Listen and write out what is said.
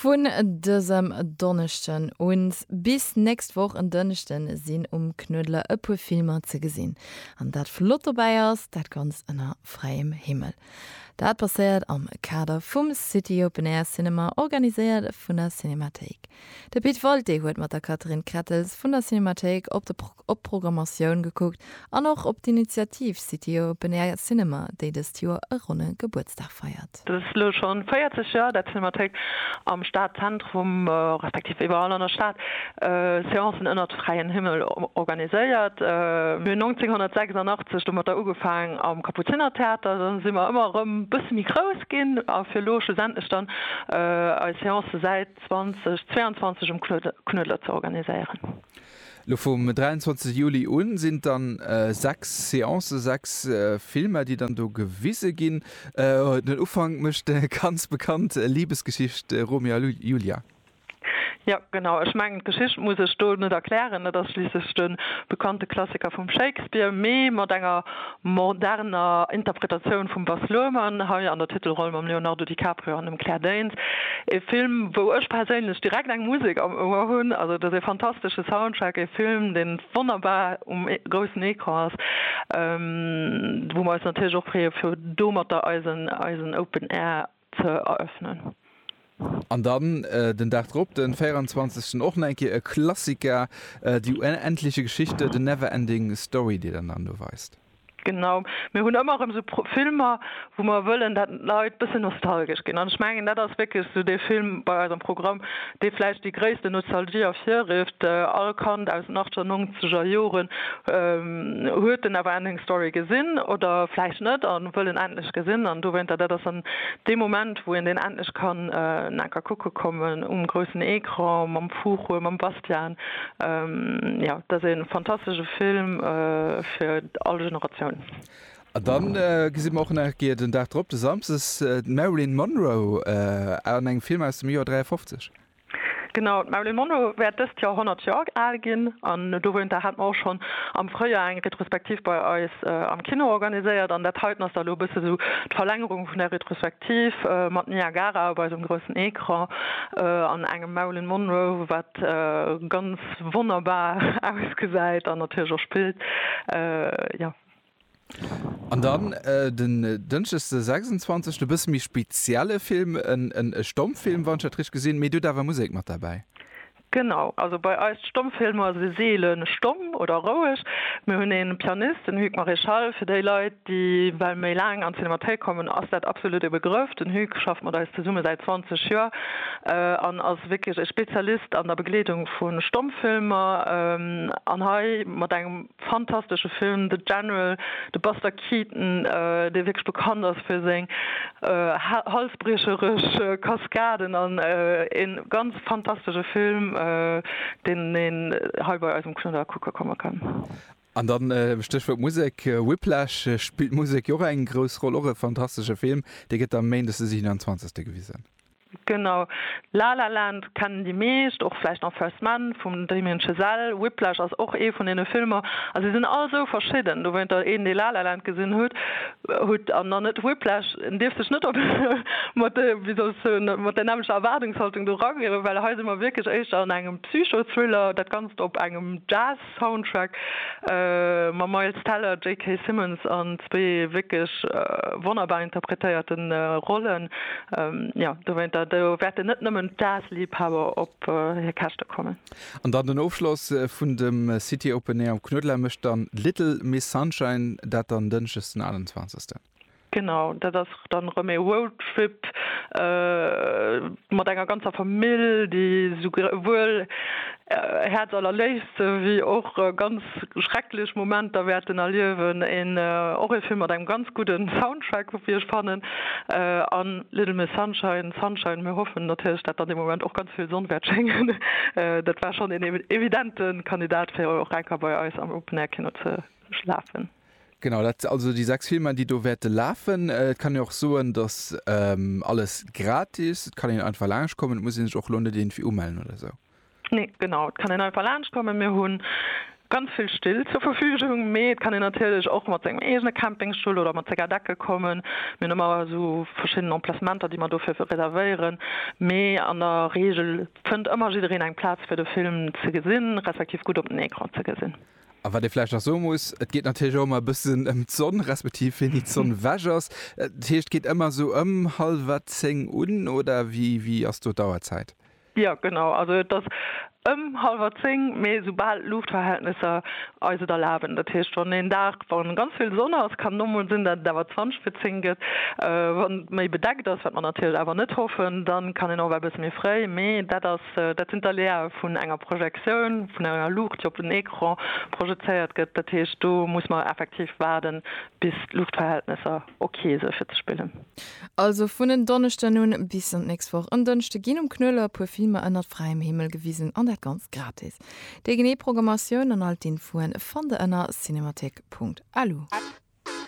Vun dësem Donneschden un bis nächst Woch en Dënschde sinn um Knuedler e puer Filmer ze gesinn. An dat flott dobäi ass, dat Ganzt ënner fräiem Himmel. Dat passéiert am Kader vum City Open Air Cinema, organiséiert vun der Cinémathéik. De Pit Walté huet mat der Catherine Krettels vun der Cinémathéik op de op d'Programmatioun gekuckt an och op d'Initiativ City Open Air Cinema, déi dëst Joer e ronne Gebuertsdag feiert. Et ass elo scho 40 Joer, dat d'Cinémathéik am Stadzentrum, respektiv iwwerall an der Stad, Seancen ënnert fräien Himmel organiséiert. Mir hunn 1986 domatter ugefaang am Kapuzinertheater, dann si mer ëmmer erëm e bësse méi grouss ginn a fir elo schlussendlech dann eis Seancen säit 2022 um Knuedler ze organiséieren. Lo vum 23 Juli un sinn et dann 6 Seancen, 6 Filmer déi dann do gewise ginn. Den Ufank mécht déi ganz bekannt Libesgeschicht Romeo a Julia. Jo genau, ech mengen d'Geschicht muss ech do net erklären, et ass schliisslech de bekannte Klassiker vum Shakespeare, mee mat enger moderner Interpretatioun vum Baz Luhrmann, hei an der Titelroll mam Leonardo DiCaprio an dem Claire Danes. Ee Film, wou ech perséinlech direkt eng Musek am Ouer hunn. Also, et ass ee fantastesche Soundtrack, ee Film, dee wonnerbar um groussen Ecran ass, wou mer eis natierlech och freeë fir domatter eisen Open Air, ze eröffnen. An dann den Dag drop, den 24. och nach eng Kéier e Klassiker, Die unendliche Geschichte, The Never Ending Story, déi der dann do weist. Genau, mir hunn ëmmer erëm esou Filmer, wou mer wëllen, dat d'Leit bëssen nostalgesch ginn. An ech mengen, dat ass wierklech esou dee Film bei eis am Programm, dee vläicht déi gréisste Nostalgie ervirrifft, all Kand aus den achter, nongzeger Joren huet den Neverending Story gesinn oder vläicht net a wëll en endlech gesinn an dowéinter, dat ass dann dee Moment, wou een deen endlech kann en enker kucke kommen um groussen Ecran mam Fuchur, mam Bastian. Jo, dat ass ee fantastesche Film fir all Generatioun. An dann gesi mer och nach eng Kéier den Dag drop, de Samsdes, d'Marilyn Monroe an engem Film aus dem Joer 53. Genau, d'Marilyn Monroe wäert dëst Joer 100 Joer al ginn. An dowéinter hat mer och schonn am Fréijoer eng Retrospektiv bei eis am Kino organiséiert. An dat heiten ass da elo e bësse sou d'Verlängerung vun där Retrospektiv, mat Niagara op eisem groussen Ecran an engem Marilyn Monroe, wat ganz wonnerbar ausgesäit an natierlech och spillt. Jo. An dann den Dënschdeg de 26 e bësse méi spezielle Film, e Stommfilm, wann ech dat richteg gesinn, mee dir hutt awer Musek mat derbäi. Genau, also bei eis Stommfilmer si seele stomm oder roueg. Mir hunn ee Pianist, den Hugues Maréchal, fir déi Leit, déi well méi laang an d'Cinémathéik kommen, ass dat absolut e Begrëff. Den Hugues schafft mat eis zesumme säit 20 Joer an ass wierklech e Spezialist an der Begleedung vu Stommfilmer an hei mat engem. Fantastesche Film, The General, de Buster Keaton, dee wierklech bekannt ass fir seng halsbriecherech Kaskaden, an e ganz fantastesche Film, deen een hei bei eis um Knudder kucke komme kann. An da Stéchwuert Musek, Whiplash, spillt d'Musek jo och eng grouss Roll? Och e fantastesche Film, dee gëtt da méindes de 27. gewisen. Genau. La La Land kennen déi meescht, och vläicht nach First Man vum Damien Chazelle. Whiplash ass och ee vun deene Filmer. A se sinn all esou verschidden. Dowéinter, een, dee La La Land gesinn hutt, hutt, an dann net Whiplash, en dierf sech net op mat de, wéi soll ech soen, mat där nämmlecher Erwaardungshaltung do rangeen, well hei si mer wierklech éischter an engem Psycho-Thriller, dat Ganzt op engem Jazz, Soundtrack mam Miles Teller, JK. Simmons an zwee wierklech wonnerbar interpretéierte Rollen. Jo, dowéinter do wäerten net nëmmen d'Jazz-Liibhaber op hir Käschte kommen. An dann den Ofschloss vun dem City Open Air am Knuedler mécht dann Little Miss Sunshine, dat dann Dënschdes den 28. Genau, dat ass dann erëm ee Roadtrip mat enger ganzer Famill, déi souwuel häerzallerléifste wéi och ganz schrecklech Momenter wäerten erliewen. Och ee Film mat engem ganz gudde Soundtrack, wéi ech fannen, a Little Miss Sunshine, Sunshine, mir hoffen natierlech, datt an deem Moment och ganz vill Sonn wäert schéngen. Dat war schonn een evidente Kandidat, fir och enker bei eis am Open Air Kino ze lafen. Genau, dat si also déi sechs Filmer, déi do wäerte lafen. Et kann een och soen, dass alles gratis, et kann een einfach laanscht kommen, et muss ee sech och elo net iergendwéi umellen oder esou. Nee, genau, et kann een einfach laanscht kommen. Mir hu ganz vill Still zur Verfügung, mee et kann een natierlech och mat sengem eegene Campingstull oder mat senger Decke kommen. Mir hunn ëmmer esou verschidden Emplacementer, déi mer dofir reservéieren, mee an der Reegel fënnt ëmmer jiddereen eng Plaz, fir de Film ze gesinn, respektiv gutt op den Ecran ze gesinn. A wat ee vläicht nach soe muss, et geet natierlech och ëmmer e bëssen ëm d'Sonn, respektiv wéini d'Sonn ewech ass. Dat heescht, et geet ëmmer esou ëm hallwer zéng un, oder wéi, wéi ass do d'Auerzäit? Jo, genau, also et ass ëm hallwer zéng, mee esoubal d'Luuchtverhältnesser eis et erlaben. Dat heescht, wann een Dag, wa ganz vill Sonn ass, kann et och mol sinn, datt et awer zwanzeg vir zéng gëtt. Wann et méi bedeckt ass, wat mer natierlech awer net hoffen, dann kann een och ewell e bësse méi fréi, mee dat ass Dat sinn d'Aléae vun enger Projektioun, vun enger Luucht, déi op den Ecran projezéiert gëtt. Dat heescht, do muss mer effektiv waarden, bis d'Luuchtverhältnesser ok sinn, fir ze spillen. Also vun en Donneschden un bis an d'nächst Woch en Dënschde ginn um Knoeler e puer Filmer ënnert fräiem Himmel gewisen, an dat Ganzt gratis. Déi genee Programmatioun an all d'Infoen fannt der ënner cinemathek.lu.